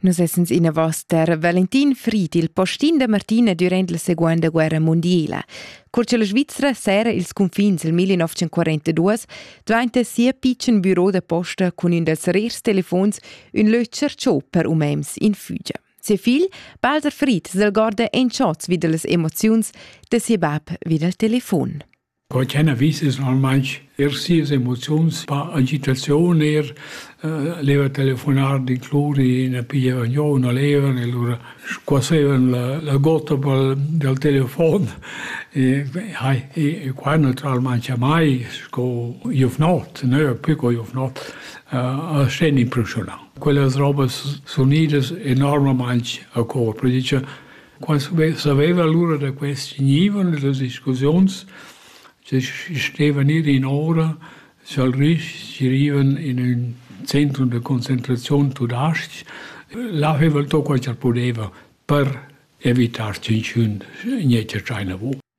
Nus essens inavos ter Valentin Fried, il postin da Martina durant la Seconda Guerra Mondiala. Cur che la Svizzera sera ils confins il 1942 dvanta sia pitschen büro da posta cun ün dels rers telefons ün lötscher ciò per umems in Fügia. Ses figl, Balzer Fried, s'algorda en chats wieder las emoziuns de ses bab wieder al telefon. Co ch'ella vis es normalmaing eir sias emoziuns, pa agitaziun eir, leva telefonar, d'incluri na pigliavan giò u na levan e lura squassevan la la gotta pel dal telefon e hai e qua natüralmaing jamai sco giuvnot, nö pü co giuvnot, a sten impressiunà. Quellas robas sunidas e normalmaing a cor, poi dice Qua saveva lura da quest gnivon e las discussiuns che stevan ir in ora scha'l rich girivan in ün centrum da concentraziun tudais-ch, là veva el to quai cha'l pudeva per evitar tschinchun gnanca tschaina vo.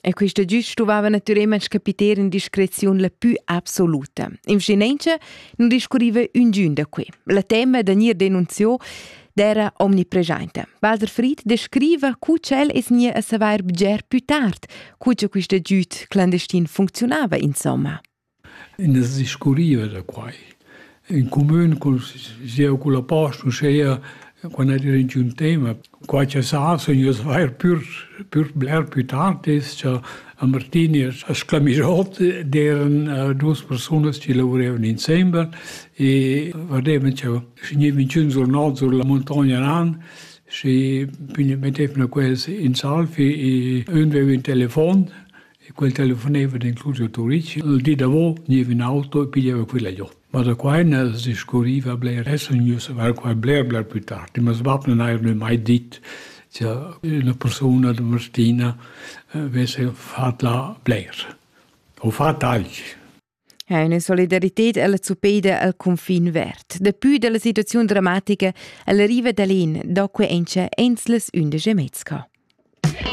E quista gius stuvava natüralmaing capiter in discreziun la pü absoluta. In vschinenza nun discurriva üngün da que. La temma da gnir denunziò d'era omnipreschainta. Walter Fried descriva cu ch'el es gnì a savair bger pü tard, cu cha quista giüd clandestin funcziunava insomma. Ina discurriva da quai. In cumün cun sieu cun la posta, uschea quando era in un tema. Qua cha sa sun ieus vair pürs pürs bler pü tard es cha a Martin e a Sclamischot d'eran duos persunas chi lavuraivan insembel e vadevan cha vgnivan ch'ün sur not sur la muntogna nan schi mettevna quels in salvi e ün veva ün telefon E quel telefoneva d'incluso Turic. Il di davo gneva in auto e piglieva quella giò. Ma da qua ina se scurriva bler, essa gnü se var qua bler bler plü tard. Ma sbap non haja mai dit che una persona da Martina avesse fat là bler. O fat alch. Ha una solidarità alla Zupeda al confin verd. Dapü dalla situaziun dramatica, el riva da lin, do que encha ens les undice mezca.